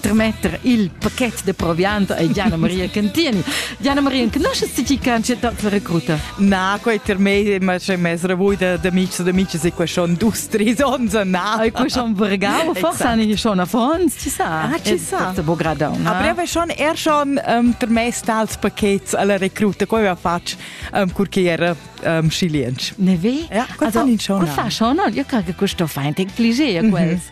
trametter il paquet de proviant a Diana Maria Cantini. Diana Maria, conosces ti chi cancetat la recruta? Na, quei ter mei ma c'è mes revui de d'amici d'amici si que schon dus tris ons na. Ai que schon vergau, forse ani schon affons, ci sa. Ah, ci sa. È bo gradon. A breve schon er schon um, ter mes tals paquets alla recruta, quei va fatg um, curchiera um, chilienc. Ne ve? Ja, quel also, fan in schon. Quel fa schon, io cred che questo fa ein tec cliché, quels.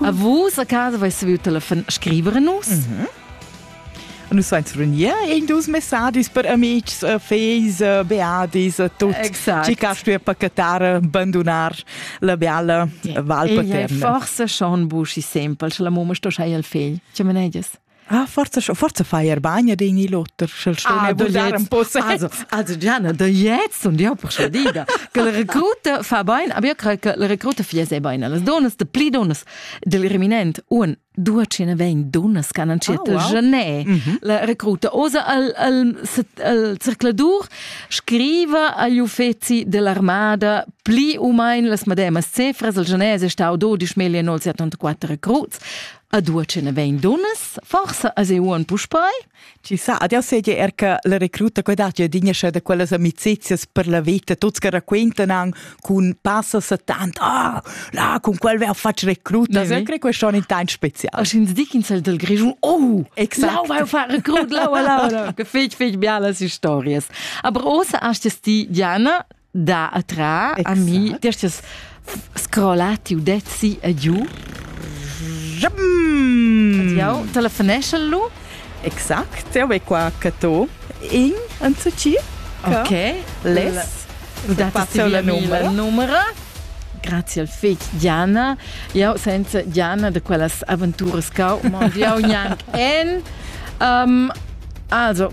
A vus a casa vais viu telefon scriver a nus. Mm -hmm. Nus vains runir in dus messagis per amics, eh, feis, eh, beadis, eh, tot. Exact. Ci cas tu pacatar, bandonar la beala yeah. val paterna. E forse schon buschi semple, la mamma sto schai al fegl. Ce meneiges? Ah, forza, forza fai er bagna din il otter, sch'el sto ah, bugliar un po' Also, also Gianna, da jetzt und ja persuadida che la recruta fa bain, aber io credo che la recruta fia se bain, las donas de pli donas del reminent un due ce ne vegn donas che hanno scelto oh, wow. Genet, mm -hmm. la recruta osa al, al, al circladur scriva agli uffeci dell'armada pli o meno las mademas cifras, il genese è stato 12.974 recruts, Ad uochen vein dunnas, forsa as euon puspei? Ci sa, adesso seigi er che la recruta che dat ja dinascia da quelles amicizias per la vita, tuts che raccontan an cun passa sa tant, ah, là, con quel wer fatg recruta. Na, sempre questo è tan special. Als ins Dickinsel del Grischun, oh, Exakt. lau, fa recrut, lau, lau, lau. Che fig, fig, bialas historias. Aber osa hast es die, Diana, da atra a mi destes scrollati u dezzi a giu Jau telefonesce lu Exact, jau e qua cato in en zu ci Ok, les U dati la numero numero Grazie al fec Diana Jau senza Diana de quellas aventuras cau Mon Dieu gnanc en um, Also,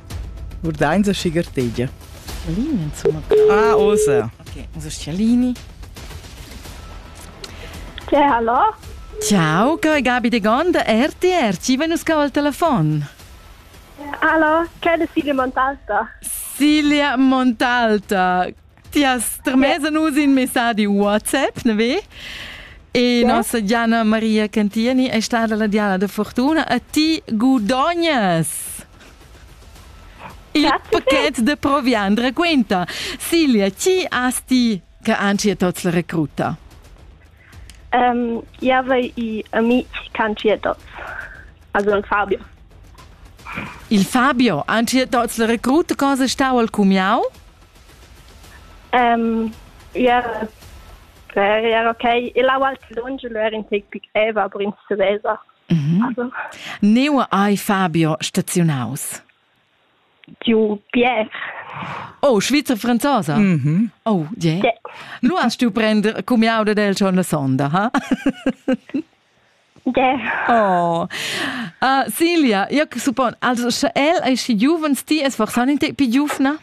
Urdains a schigartegia. Scalini insomma. Ah, osa. Ok, usa Scalini. Che hallo? Ciao, che è Gabi de Gonda, RTR, ci venu scava il telefono. Hallo, che è Silvia Montalta? Silvia Montalta, Tias termesa nus in messadi WhatsApp, ne ve? E yeah. nostra Diana Maria Cantieni è stata la Diana da Fortuna e ti guadognas il pacchet de proviant racconta. Silvia, chi asti che anci è tots la recruta? Um, Java i amici canci è tots. Also il Fabio. Il Fabio, anci è tots la recruta, cosa stau al cumiau? Ia era ok. E là ualti lunsch lu era in tec pi greva, aber ins saveva. Neu ei Fabio staziunaus. Giu Pierre. Oh, Schweizer Franzosa. Mhm. Oh, je. Yeah. Nu hast du prender cumiauda del schon la sonda, ha? Yeah. Oh. Uh, Silvia, io suppon, also sche el ei schi giuvens, ti es forsan in te pi giuvna?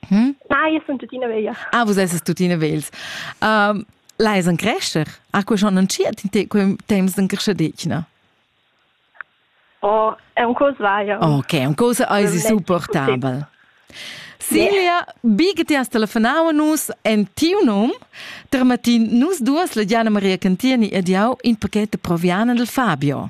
Hm? Na, io sun tuttina veglia. Ah, vus esses tuttina vegls. Um, l'hai en crescer? Ah, quei schon entschiet in te quei temps en creschadetgna? Oh, è un cosa vaia. Ok, un cosa eisi supportabel. Silvia, bi che ti has telefonau nus en tiu num, Termatin, nus duas la Gianna Maria Cantini ed jau in pacchetto proviana del Fabio.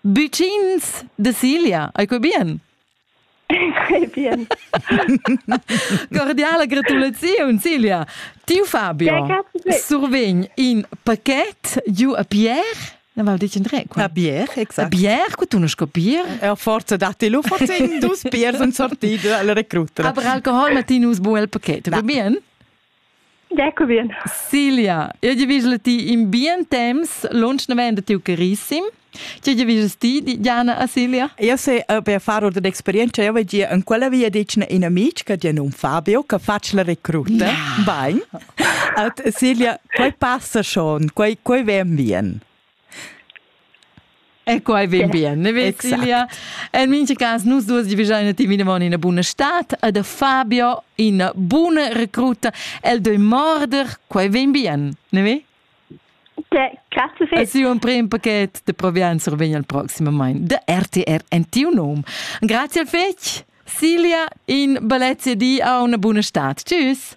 Büchins de Silja, ei quei bien? bien. Cordiale gratulaziun, Silja. Tiu Fabio ja, survegn in paquet giu a Pierre Ne val dici tre. A bier, exact. A bier, cu tu non scopir. E forza datti lu, forza in dus biers un sortito alla recruta. Aber Alkohol, Martinus, buel paquet. Va bene? Ecovien. Silja, io divigel ti in bien temps lunschnavent tiu carissim. Che divigel ti, Diana a Silja? Io se per far ordine d'experienza io vegia in quella via dicen in amic che di un Fabio che faccia la recruta. No. Bain. At Silja, quei passa schon, quei quei ven bien. E quai vegn bien, ne Cecilia? En mintga cas, nus duas divigiain attivament ina buna stad e da Fabio ina buna recruta. El doi morder, quai vegn bien, ne ve? Grazie viel. Sì, un prim pacchet de Provianza vegn al proximament de RTR Antionum. Grazie al fetg, Silja, in balezia di a una buona stad. Tschüss.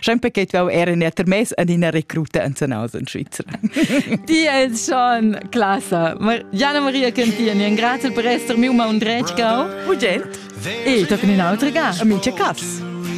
Sempre che tu era in termes ad ina recruta en Zanausen in Svizzera. Di es schon classa. Gianna Maria Cantieni, grazie per essere miu ma un dretgau. Ugent. E tochen in autre ga, amici Cass.